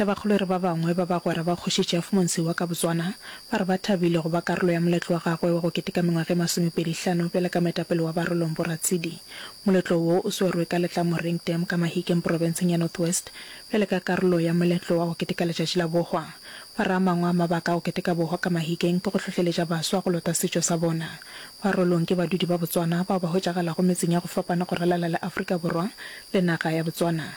Tabakgolo e re ba bangwe ba bagwera ba Kgoši Jeff Monsi wa ka Botswana ba re ba thabile go ba karolo ya moletlo wa gagwe wa go keteka mengwaga e masomepedi hlano bjale ka moetapele wa Barolong Boratsidi. Moletlo wo o swerwe ka Letlamoreng Dam ka Mahikeng Porofenseng ya North West bjale ka karolo ya moletlo wa go keteka letšatši la bohwa. Ba re a mangwe a mabaka a go keteka bohwa ka Mahikeng ke go hlohleletša baswa go lota setšo sa bona. Barolong ke badudi ba Botswana bao ba hwetšagalago metseng ya go fapana go ralala le Afrika Borwa le naga ya Botswana.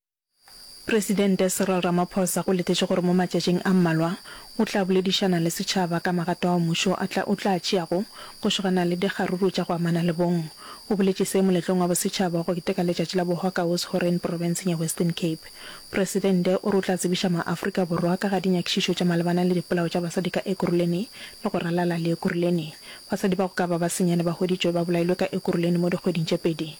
Presidente Cyril Ramaphosa o letetše gore mo matšatšing a mmalwa o tla boledišana le setšhaba ka magato ao mmušo a tla o tla a tšeago go šogana le dikgaruru tša go amana le bong. O boletše se moletlong wa bosetšhaba wa go keteka letšatši la bohokawos Horeng profenseng ya Western Cape. Presidente o re o tla tsebiša maAfrika Borwa ka ga dinyakišišo tša malebana le dipolao tša basadi ka Ekurhuleni le go ralala le Ekurhuleni. Basadi ba go ka ba ba senyane ba hweditšwe ba bolailwe ka Ekurhuleni mo dikgweding tše pedi.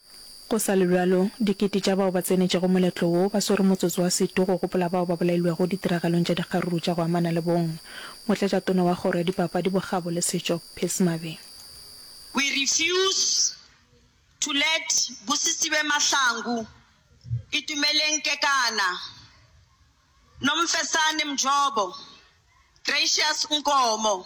Go sa le bjalo, dikete tša bao ba tsenetšego moletlo wo ba swere motsotso wa setu go gopola bao ba bolailwego ditiragalong tša dikgaruru tša go amana le bong. Motlatšatona wa Kgoro ya Dipapadi, Bokgabo le Setšo, Peace Mabe. We refuse to let Busisiwe Mahlangu, Itumeleng Kekana, Nomfesane Mjobo, Gracious Nkomo,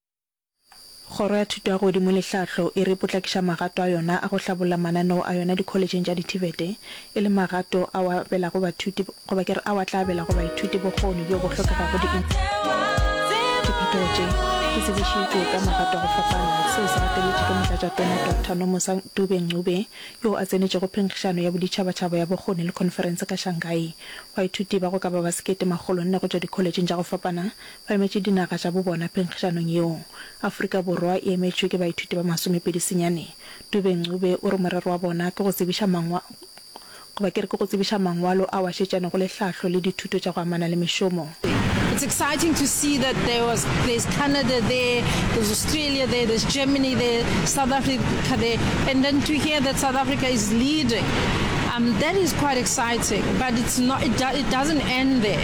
Kgoro ya Thuto ya Godimo le Tlhahlo e re e potlakiša magato a yona a go hlabolla mananeo a yona dikholetšheng tša dithibete, e leng magato ao a abelago bathuti, goba ke re ao a tla abelago baithuti bokgoni bjo bo hlokegago diphetogo tše di tsebišitšwe ka magato a go fapana. Seo se gateletše ke Motlatšatona Doctor Nomusa Dube-Ncube yoo a tsenetšego phenkgišano ya boditšhabatšhaba ya bokgoni le khonferense ka Shanghai. Baithuti ba go ka ba ba sekete makgolo nne go tšwa dikholetšheng tša go fapana Ba emetše dinaga tša bo bona phenkgišanong yeo. Afrika Borwa e emetšwe ke baithuti ba masomepedi senyane. Dube Ncube o re morero wa bona ke go tsebiša mangwa, goba ke re ke go tsebiša mangwalo ao a šetšanego le hlahlo le dithuto tša go amana le mešomo. It's exciting to see that there was, there's Canada there, there's Australia there, there's Germany there, South Africa there, and then to hear that South Africa is leading, um, that is quite exciting, but it's not, it, do, it doesn't end there.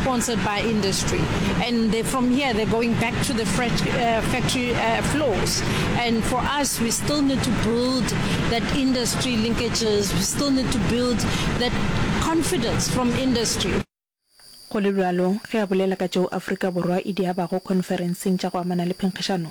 sponsored by industry and they, from here they're going back to the uh, factory uh, floors and for us we still need to build that industry linkages we still need to build that confidence from industry go le bjalo ge a bolela ka tšeo afrika borwa e di abago conferenceng tša go amana le phenkgišano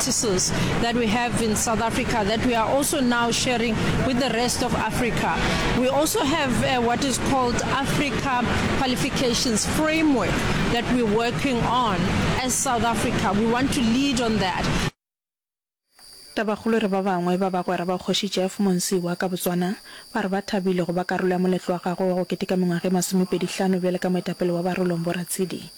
practices that we have in South Africa that we are also now sharing with the rest of Africa. We also have uh, what is called Africa Qualifications Framework that we're working on as South Africa. We want to lead on that. Tabakgolo re ba bangwe ba bagwera ba Kgoši Jeff Monsiwa ka Botswana ba re ba thabile go ba karolo ya moletlo wa gagwe wa go keteka mengwaga e masomepedi hlano bjale ka moetapele wa Barolong Boratshidi.